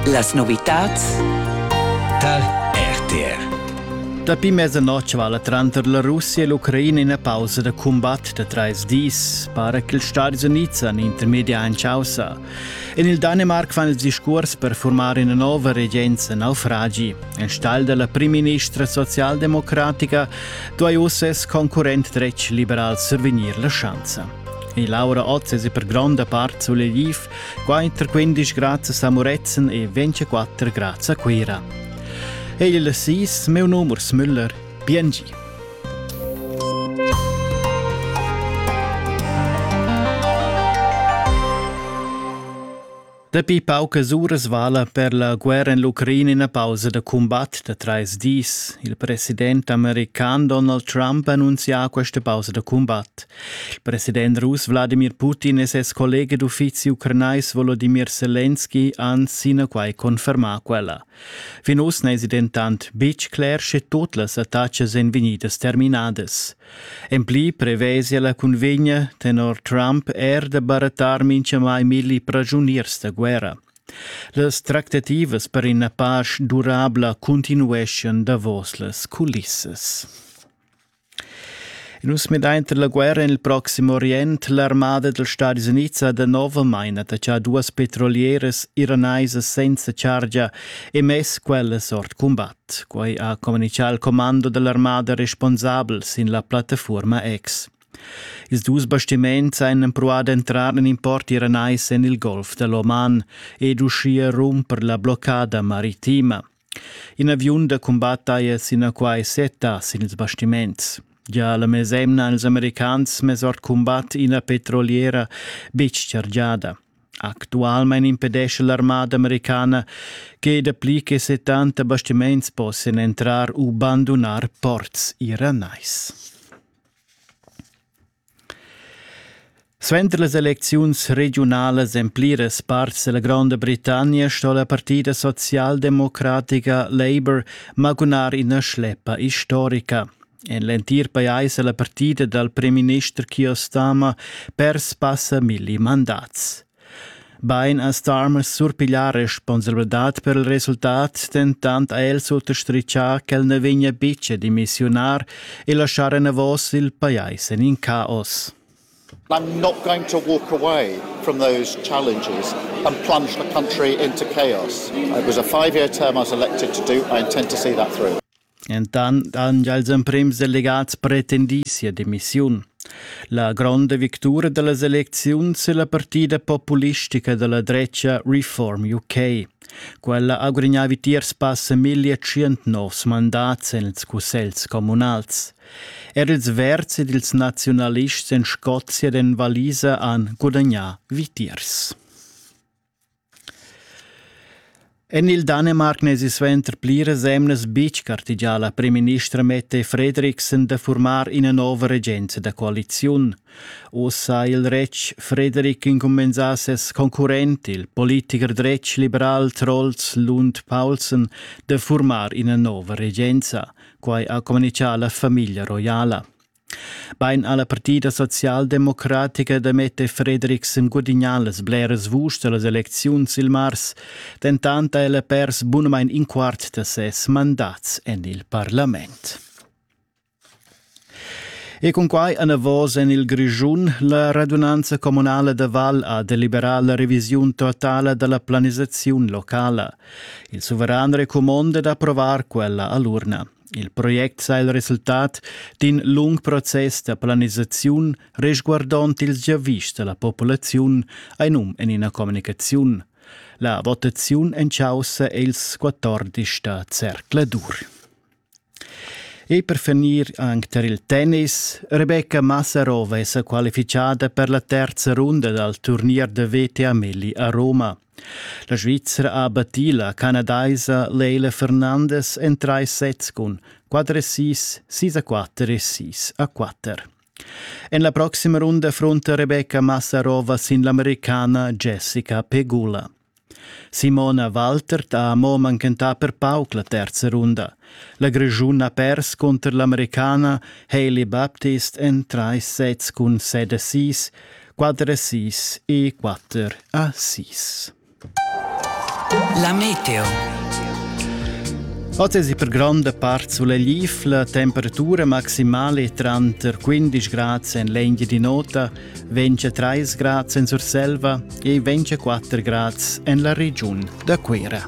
Las novitads tar RTR. Dapi mezza notg vala tranter la Russia e l'Ucraina ina pausa da cumbat da trais dis, para che ils Stadis Unids han intermedia en chaussa. En il Danimarc fan ils discurs per formar una nuova regenza naufragi. Enstagl della primministra socialdemocratica duai uss ses concurrent dretg liberal survegnir la schanza. E Laura oz es per gronda part sulle Liv, 415 grazie a Muretzen e 24 grazie a Cuira. Egli sis, meu num Urs Müller, Biengi. Dapi paucas uras vala per la guerra en l'Ucraina ina pausa da cumbat da trais dis. Il president american Donald Trump annunzia questa pausa da cumbat. Il president russ Wladimir Putin e ses collega d'uffizi ucranais Volodimir Selenski han sinaquai confermà quella. Fin uss n'èsi dentant betg cler sche tut las attacas èn vegnidas terminadas. En pli prevesia la cunvegna tenor Trump er da barattar minchamai milli pragiuniers da guerra. Las tractativas per ina pasch durabla continueschan davos las culissas. In us medainter la guerra en il Proximo Orient, l'armada dels Stadis Units ha da novamain attaccà duas petrolieras iraneisas senza chargia e mess quellas ord combat. Quei ha communicà al commando dall'armada responsabel sin la plattafuorma X. Ils dus bastiments ein empruà d'entrar en in port iranais en il Golf dell'Oman ed uschia rumper la bloccada maritima. In aviun da cumbat haja sinaquai setta sin ils bastiments. Gia la mesemna han ils americans mess ord cumbat ina petroliera betg chargiada. Actualmein impedescha l'armada americana che dapli che settanta bastiments possian entrar u bandunar ports iranais. Suenter las elecziuns regiunalas en pliras parts della Gronda Britannia sto la partida socialdemocratica Labour magunar ina schleppa historica. En l'entir pajais è la partida dal primminister Keir Starmer pers passa milli mandats. Bain ha Starmer surpiglià responsabladad per il resultat, dentant ha el sottastritgà ch'el na vegnia betg a dimissiunar e laschar enavos il pajais en in caos. I'm not going to walk away from those challenges and plunge the country into chaos. It was a five year term I was elected to do. I intend to see that through. Entant han gia ils emprims delegats pretendì sia demissiun. La gronda victura da las elecziuns è la partida populistica da la dretga Reform UK. Quella ha gudagnà vitiers passa 1100 novs mandats en ils cussels communals. Er ils verds ed ils naziunalists en Scozia ed en Valisa han gudagnà vitiers. En il Danemarc n'esi suenter pliras emnas betg gartegià la primministra Mette Fredriksen da furmar ina nova regenza da coaliziun. Oz ha il retg Frederik incumbensà ses concurrent, il politicher dretg liberal Trolls Lund Paulsen, da furmar ina nova regenza. Quai ha communitgà la famiglia roiala. Bein ha la partida socialdemocratica da metter Fredriksen gudignà las bleras vuschs dallas elecziuns il mars, dentant ha ella pers bunamain in quart da ses mandats en il parlament. E cun quai anavos en il Grischun, la radunanza communala da Val ha deliberà la revisiun totala da la planisaziun locala. Il suveran recumonda d'approvar quella a l'urna. Il project sa il resultat d'in lung process da planisaziun resguardond ils giavischs da la populaziun ein um en ina communicaziun. La votaziun en caussa è ils 14 da Zercladur. E per finir anche per il tennis, Rebecca Massarova è qualificata per la terza runda dal turnier da VTA Melli a Roma. La Svizra ha battì la canadaisa Leila Fernandes en trais sets cun 4 e 6, 6 a 4 e 6 a 4. En la proxima runda frunta Rebecca Massarova sin l'americana Jessica Pegula. Simona Waltert ha mo manchentà per pauc la terza runda. La Grischun ha pers cunter l'Americana Hailey Baptist en trais sets cun set e sis, quater sis e quatter a sis. La meteo. Oz è per gronda part sulla lifla temperatura maximale tranter 15 grad en l'Engia di Nota, 23 grad en Surselva e 24 grad en la regiun da Cuera.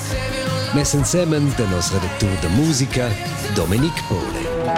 Mess ensemen da nos redactur da musica Dominic Pole.